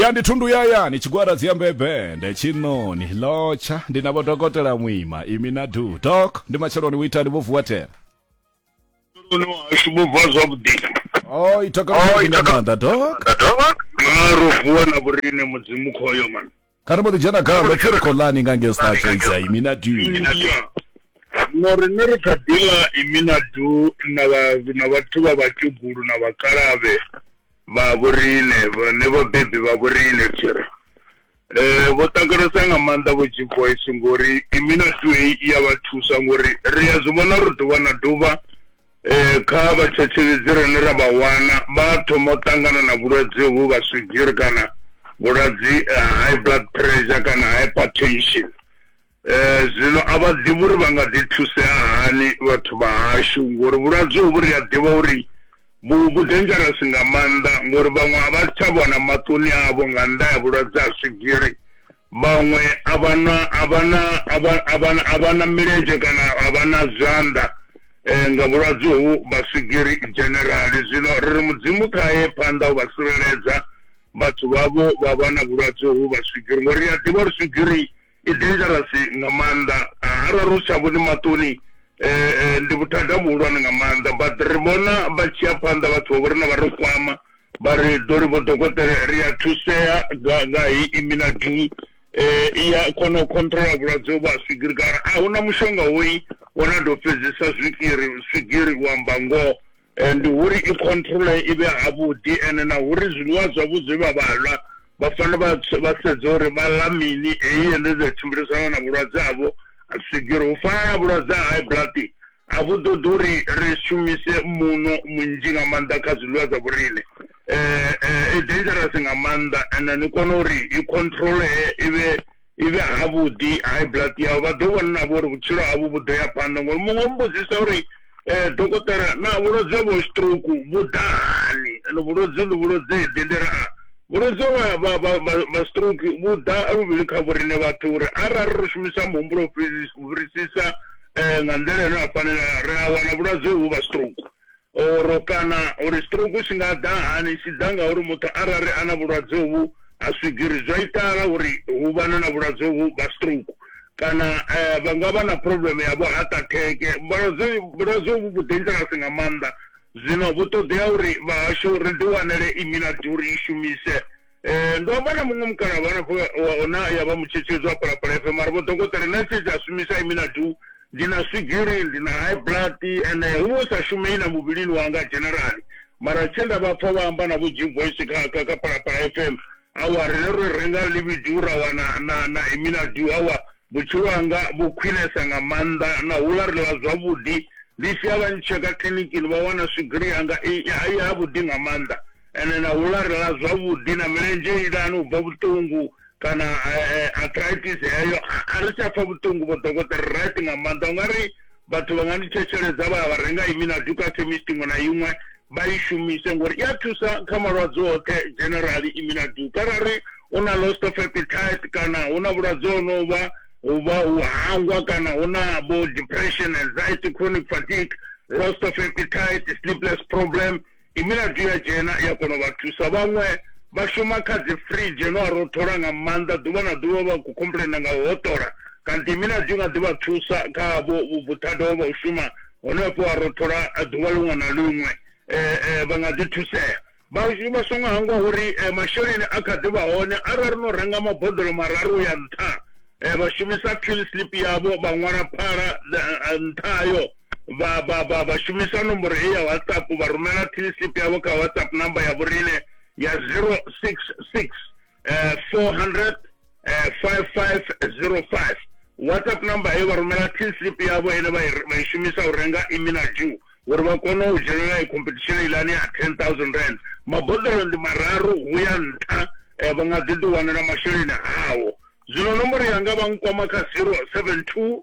ya ndi thundu yaya ni tshigwada dziyambe bende tshinoni lotsha ndi na vhodokotela muima imi na du dok ndi matsheloni u itani vho vuwa tela uno hashu vho vuwa zwavhuḓi o itokela nga maanḓa dok ro vuwa na vhorine mudzimu khoyo mani kana mbo ḓi dzhena khaḽo pfi ri khou ḽani nga ngei star trades ya imi na du no riṋe ri kha ḓila imi na du na vhathu vha vhakegulu na vhakalavhe vha vhoriṋe vhane vhabebi vha vhoriṋe tshiri eh vho takalesa nga maanḓa vho G Voice ngori imina two i ya vha thusa ngori ri a zwi vhona ri ḓuvha na ḓuvha Kha vhathetshelesi rine ra vha wana vha thoma u ṱangana na vhulwadze uvhu vha swigiri kana vhulwadze ha high blood pressure kana hypertension. Zwino a vha ḓivhi uri vha nga ḓi thusea hani vhathu vha hashu ngori vhulwadze uvhu ri a ḓivha uri vhu vhu dangerous nga maanḓa ngori vhaṅwe a vha tsha vhona maṱoni avho nga nnḓa ha vhulwadze ha swigiri. Vhaṅwe a vha na, a vha na, a vha, a vha, a vha na milenzhe kana a vha na zwanḓa nga vhulwadze hovhu, vha swigiri dzhenerali. Zwino ri ri Mudzimu kha ye phanḓa u vha tsireledza, vhathu vhavho vha vha na vhulwadze hovhu vha swigiri, ngori ri a ḓivha uri swigiri i dangerous nga maanḓa, arali ro tsha vhone maṱoni ndi vhuthada vhuhulwane nga maanḓa. But ri vhona vha tshi ya phanḓa vhathu vhavho riṋe vha ri kwama, Vha ri, Dolly Vho Dokotela, ri a thusea nga, nga hei Iminadin. E, i ya kona u khontrola vhulwadze uvhu ha swigiri, kana a hu na mushonga hoyi wo na tou fhedzisa zwikiri, swigiri, u amba ngoho. E, ndi uri i khontrole i vhe havhuḓi, ene na uri zwiḽiwa zwavho zwe vha vha ḽa, vha fanela vha, vha sedze uri vha ḽa mini, heyi endedzi ya tshimbilisana na vhulwadze havho ha swigiri, u fana na vhulwadze ha high blood. A vhu ṱoḓi uri ri shumise muṋo munzhi nga maanḓa kha zwiḽiwa zwa vhoriṋe. I dangerous nga maanḓa and ni kona uri i controlee i vhe i vhe havhuḓi high blood yau vha ḓo vhona na vho uri vhutshilo havho vhu ḓo ya phanḓa ngori muṅwe o mmbudza uri dokotela naa vhulwadze ha vho stroke vhu ḓa hani and vhulwadze ndi vhulwadze ḓe ndi ri a vhulwadze ha stroke vhu ḓa luvhili kha vhoriṋe vhathu uri arali ro shumisa muhumbulo u fhirisisa Nga nḓila ine ya fanela, ri a wana vhulwadze uhu ha stroke or kana uri stroke tshi nga ḓa hani, tshi ḓa nga uri muthu arali a na vhulwadze uhu ha swigiri zwi a itala uri hu vhane na vhulwadze uhu ha stroke kana vha nga vha na problem ya vho heart attack. Vhulwadze vhulwadze uhu vhu dangerous nga maanḓa zwino vhu ṱoḓea uri vhahashu ri ḓi wanele immunity uri i shumise. Ndo amba na muṅwe mukalaha vha na khoya wa ona ya vha mutshetshedzi wa phalaphala FM ari vho dokotela na tshedzi a shumisa imi na du ndi na swigiri ndi na high blood ene hu vho sa shumei na muvhilini wanga generally mara tshe nda vha pfa vha amba na vho Jim Voice kha kha kha phalaphala FM awa rine ro renga libidu ra wana na na imi na du awa vhutshilo hanga vhu khwinesa nga maanḓa na hula ri ḽa zwavhuḓi ndi tshi ya vha ntsheka kiḽinikini vha wana swigiri yanga i ha vhuḓi nga maanḓa Ene na hula ri ḽa zwavhuḓi na milenzhe ilani u bva vhuṱungu kana arthritis heyo a ri tsha pfa vhuṱungu vho dokotela ri right nga maanḓa ungari vhathu vha nga ni thetsheledza vha ya vha renga iminadu kha khemist iṅwe na iṅwe vha i shumise ngori i a thusa kha malwadze oṱhe generally iminadu kharali u na lost of appetite kana hu na vhulwadze ho no vha u vha u hangwa kana hu na vho depression anxiety chronic fatigue lost of appetite sleepless problem I milaḓi ya dzhena ya kona u vha thusa. Vhaṅwe vha shuma kha dzi firidzhe no a rothola nga maanḓa ḓuvha na ḓuvha vha khou complainer nga u hoṱola kanti i milaḓi i nga ḓi vha thusa kha vho vhuthada ho vha u shuma hone vho a rothola ḓuvha ḽiṅwe na ḽiṅwe vha nga ḓi thusea. Vha vha songo hangwa uri masheleni a kha ḓi vha hone arali no renga maboḓelo mararu u ya nṱha vha shumisa kill slip yavho vha ṅwala phala nṱha hayo. vha, vha, vha, vha shumisa nomboro heyi ya whatsapp vha rumela tlcp yavho kha whatsapp number ya vhoriṋe ya 066 eh, 400 eh, 5505 whatsapp number heyo vha rumela tlcp yavho ene vha i shumisa u renga imi na ju uri vha kone u dzhenelela i competition ilani ya 10000 rand maboḓelo ndi mararu hu ya nṱha eh, vha nga ḓi ḓiwanela masheleni awo zwino nomboro yanga vha nkwama kha 072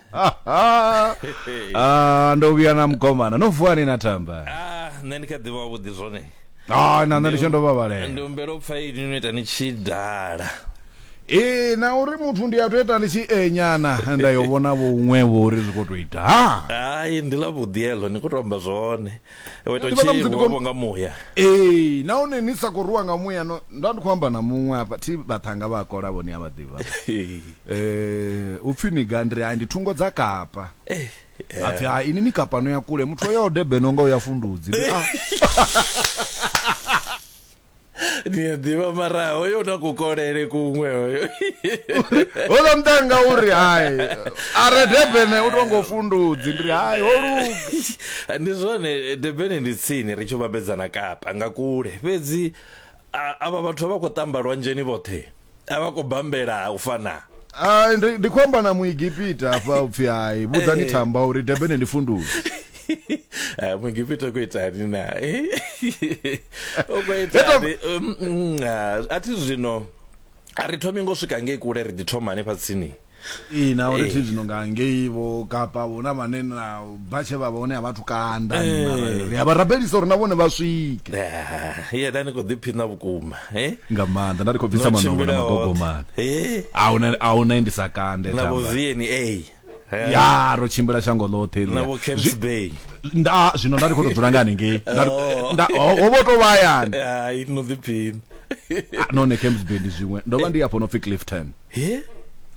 Ah, ndo vhuya na mugomana no vuwa ni na tamba ah nṋe ndi kha ḓivha wavhuḓi zwone ah na nṋe ndi tsho ndo vhavhalela ndi humbela u pfa ini no ita ni tshi dala ee na uri muthu ndi a to ita ndi tshi enyana nda yo vhona vho uṅwe vho uri zwi khou tou ita ha ai ndi ḽa vhuḓi heḽo ni khou tou amba zwone Wo ita Ndi vhona musi ndi tshivho khou- vho nga muya. ee nahone ni sa khou rwiwa nga muya no nda ndi khou amba na muṅwe hafha thi vhaṱhanga vha a kola vhone a vha ḓivha Eh, u pfhi ni ga ndiri hai ndi thungo dza kapa a pfhi hai ini ni kapa no ya kule muthu o yaho debeno nga u ya fundudzi Ndi, ah. ni a ḓivha mara hoyo na kukolele kuṅwe hoyo hola mdanga uri hai are debene u tongo fundudzi ndi hai ho luga ndi zwone debene ndi tsini ri tshi vhambedzana kapa nga kule fhedzi a- avha vhathu vha khou tamba lwanzheni vhoṱhe a vha khou bambela u fana Ah, ndi ndi khou amba na muegipita hafha u pfhi hai vhudzani Eh. thamba uri debene ndi funduzi Ah, muegipita ku itani na u khou itani Um, mm, ah, a thi zwino a ri thomi ngo swika ngei kule ri ḓi thoma hanefha tsini ee na uri thi zwino nga ngei vho kapa huna vhane na bva tshe vha vha hone a vhathu kanda eh. ri a vha rabelisa uri na vhone vha swike ye da ni khou ḓiphina vhukuma eh? nga maanḓa nda ri khou bvisa manongo na magogomane eh. a u na ndi sa kande na vho vna ya ro tshimbila shango ḽoṱhe nda zwino nda ri khou tou dzula nga hanengei oh. ho vho tou vha hayani ah, none camps bay ndi zwiṅwe ndo vha ndi afho no pfi clifton he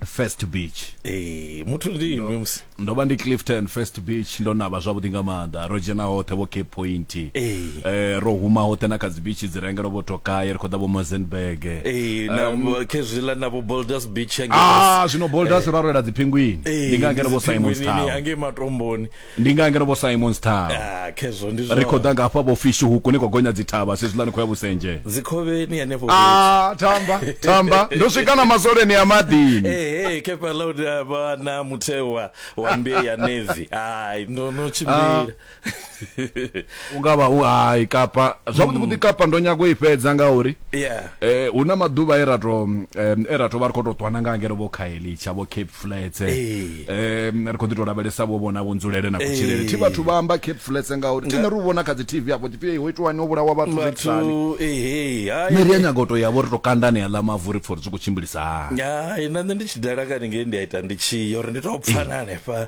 first beach ee muthu ndi iwe musi ndo vha ndi clifton first beach ndo navha zwavhuḓi nga maanḓa ro dzhena hoṱhe vho cape point Ee. eh, ro huma hoṱhe na kha dzibichi dzi rengelo vho tokaye ri khou ḓa vho mozenberg ee na khezwiḽa na vho boulders beach hange ah zwino boulders ro rwela dzipingwini ndi nga ngeno vho simon town angei matomboni ndi nga ngeno vho simons town ah, khezwo ndi ri khou ḓa nga hafha vho fishi huku ni khou gonya dzithavha sezwiḽa ni khou ya vhusenje dzikhovheni henefho ah, tamba tamba ndo swika na masoleni ya maḓini ehe kepa loud eh, vha na mutheo wa wa mbe ya navy ai ndo no tshimbila ah. u nga vha u hai kapa zwavhuḓi vhuḓi kapa ndo nyago i fhedza ngauri Yeah. eh hu na maḓuvha e ra to em, e ra to vha ri khou tou ṱwana nga ngeno vho khaelitsha vho cape flats Ee. em ri khou ḓi tou lavhelesa vho vhona vho nzulele na kutshilele thi vhathu vha amba cape flats ngauri thi ne ri u vhona kha dzi tv afho tshipfi "Ei, ho itiwani ho vhulawa vhathu zwi itisani Vhathu, ehe, hai. nṋe ri a nyaga u tou yavho ri tou kandane aḽa mavu ri pfa uri zwi khou tshimbilisa hani Hai, na nṋe ndi tshi dala kani ngei ndi a ita ndi tshi yo uri ndi tou pfana hanefha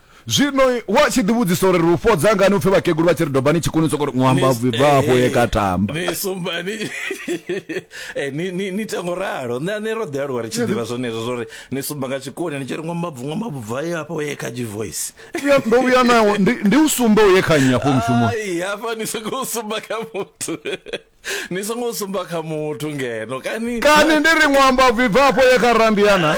Zwino wa tshi ḓi vhudzisa uri ri u fhodza ngani upfhi vhakegulu vha tshi ri dobani tshikuni soko ri ṅwamba Ni- bvi bva afho ye eh, ka tamba ni sumba ni eh, ni- ni- ni ita ngo ralo nṋe nṋe ro ḓi aluwa ri tshi ḓivha zwenezwo zwo ri ni sumba nga tshikoni ni tshi ri ṅwambabvu ṅwambabvu bva ye hafha uye kha voice Vhuya- ndo vhuya nawo ndi, ndi u sumbe uye kha nnyi afho mushumoni ai hafha ni sokou sumba kha muthu ni songo sumba kha muthu ngeno kani kani ndi ri ṅwamba bvibvapo ye kha randiana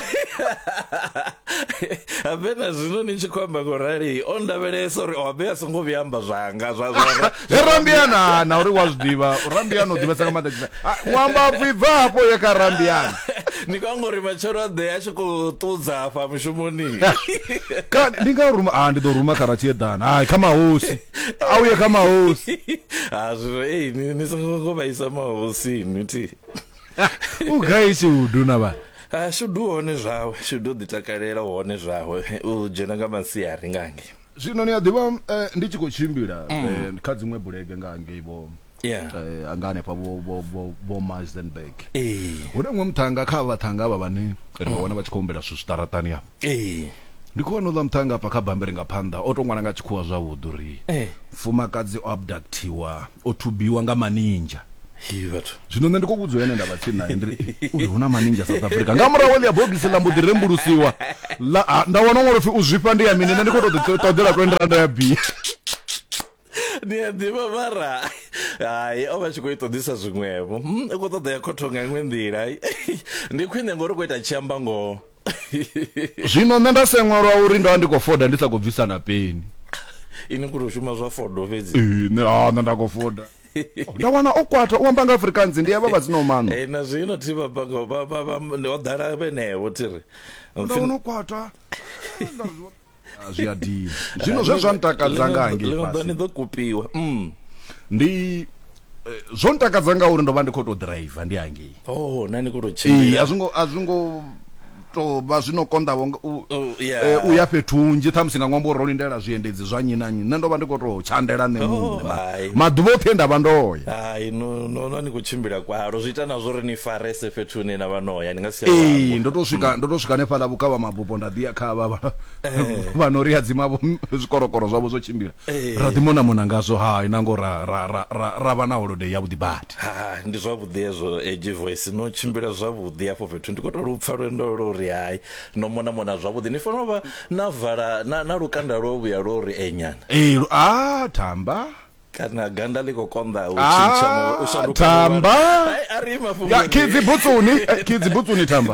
habe na zwino ni tshi khou amba ngo rali o ndavhelesa uri habe a songo vhuya amba zwanga zwa zwa he randiana na uri wa zwi ḓivha randiana u ḓivhesa nga maanḓa tshifhe ṅwamba bvibvapo ye kha randiana ni khou anga uri matshelo a ḓe a tshi khou ṱudza hafha mushumoni kani ndi nga ruma a ndi ḓo ruma kha ratshieḓana hai kha mahosi auye kha mahosi hazvo ei ni songo ngo vhaisa mahosi niti u gai shudu na vha ah, shudu hone zwawe shudu ḓi takalela hone zwawe u dzhena nga masiari ngange zwino ni a ḓivha eh, ndi tshi khou tshimbila mm. eh, kha dziṅwe bulege nga ngei vho yeah eh, anga hanefha vho vho vho vho Mazenberg ee hune mwe muthanga kha vhathanga vha vhane ri wana vha tshi khou humbela zwithu zwiṱaratani ya ee ndi khou vhona uḽa muthanga afha kha bambiri nga phanḓa o to ṅwala nga tshikhuwa zwavhuḓi uri Eh. mfumakadzi o abductiwa o thubiwa nga maninja hi vhathu zwino nṋe ndi khou vhudzwa ene nda vha tsini naye ndiri uyu hu na maninja south africa nga murahu ḽia bogisi ḽa mbo ḓi rembulusiwa ḽa- ha, nda wana ṅwalo pfi u zwifha ndi ya mini nṋe ndi khou to ḓi ṱoḓela 20 randa ya bia ni a ḓivha mara hai o vha tshi khou ita ḓisa zwiṅwevho hmm, u khou ṱoḓa ya khotho nga iṅwe nḓila ndi khwine ngori u khou ita tshi amba ngoho zwino nṋe nda seṅwelwa uri ndo vha ndi khou foda ndi sa khou bvisa na peni ini kuri u shuma zwa fodo fhedzi nṋe ha nṋe nda khou foda nda wana o kwata u amba nga afrikaans ndi avha vhadzina omano e eh, na zwino thi vha banga vha vha vha ḓala vhenevho thiri nda wana o kwata Ah, zwi a dina zwino zwe zwa ntakadza nga hangei fhasi ḓo kupiwa mm. ndi eh, zwo ntakadza nga uri ndo vha ndi khou tou driver ndi hangei oh, na ni khou tou tshimbila a zwi ngo a zwi ngo to vha zwi no konḓavho oh, eh, u ya fhethu hunzhi ṱhamusi nga ṅwambo ro lindela zwiendedzi zwa nnyi na nnyi nṋe ndo vha ndi khou tou tshandela nṋe oh, muṋe maḓuvha oṱhe nda vha ndoya hai nona ni khou tshimbila kwalo zwi ita na zwo ri ni farese fhethu hune na vha noya ni nga si ee ndo to swika ndo to swika hanefhaḽa vhukavha mabupo ra ḓiya kha vha eh. vha no ri hadzima zwikorokoro zwavho zwo tshimbila eh. ra ḓi mona mona ngazwo ha ina ngo ra ra ra ra vha na holiday ya vhuḓi badi ha ndi zwavhuḓi ezwo edge voice no tshimbila zwavhuḓi afho fhethu ndi kho to lupfa lwendo lwo ri hai no mona mona zwavhuḓi ni fanela vha na vala na na lukanda lwo vhuya lwo ri enyana eh a thamba kana ganda liko konda u ah, tshintsha mo u shanduka tamba ya kidzi butsuni eh, kidzi butsuni tamba